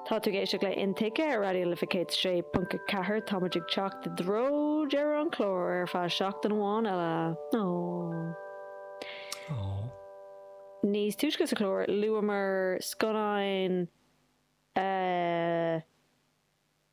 Tá tú ag éisteacht le Intuigthe ar Raidió na Life 106.4. Tá muid ag teacht i dtreo dheireadh an chláir ar feadh seachtain amháin eile. Níos túisce sa chlár, luamar scannáin a.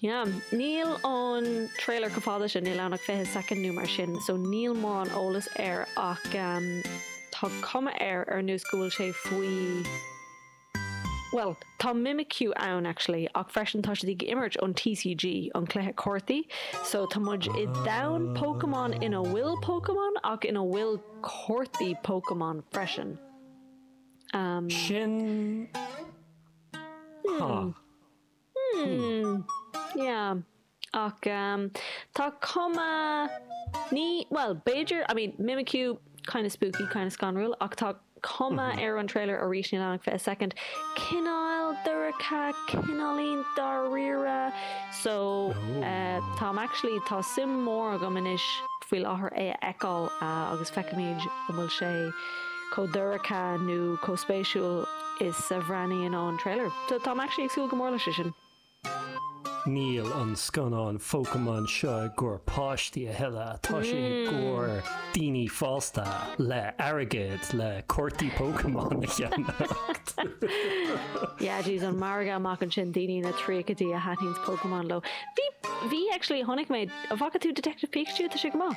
Yeah. Níl an trailer chomh fada sin, níl ann ach fiche soicind nó mar sin, so níl mórán eolas air ach ehm tá cuma air ar nós go bhfuil sé faoi bhuel tá Mimikyu ann actually ach freisin tá siad ag imirt an TCG, an cluiche cártaí, so tá muid i domhan Pokémon ina bhfuil Pokémon ach ina bhfuil cártaí Pokémon freisin. Ehm. Sin. Hmm. Hmm, yeah. Ach ehm, tá cuma, ní, bhuel, b'fhéidir, I mean, Mimikyu, kinda spooky, kinda scanrúil, ach tá cuma ar an trailer arís, níl ann ach fiche second, cineál dorcha, cineáilín dáiríre, so eh, táim actually, tá suim mór agam anois faoi láthair é a fheiceáil ah, agus feicfimid an bhfuil sé. chomh dorcha nó chomh spéisiúil is a bhreathnaíonn ón trailer. So táim actually ag súil go mór leis é sin. Níl an scannán Phokémon seo i gcomhair páistí a thuilleadh, tá sé i gcomhair daoine fásta le hairgead le cártaí Pokémon a cheannacht! Yeah díreach an margadh amach ansin daoine ina dtríochaidí a thaitníonns Pokémon leo. Bhí, bhí actually chonaic mé, an bhfaca tú Detective Pikachu? Tá sé go maith.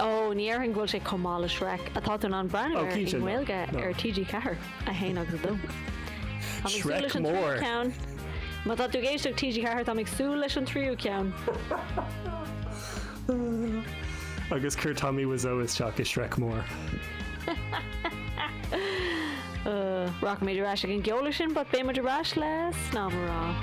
Ó, ní déarfainn go bhfuil sé chomh maith le Shrek, atá tú in ann breathnú air i nGaeilge ar TG4, 1 agus 2. Táim ag súil leis an tríú ceann. Má tá tú ag éisteacht TG4, táim ag súil leis an tríú ceann. Agus cuir Tommy Wiseau isteach i Shrek Mór. Rachaimid ar ais ag an gceol ansin, but beidh muid ar ais le seanmóir.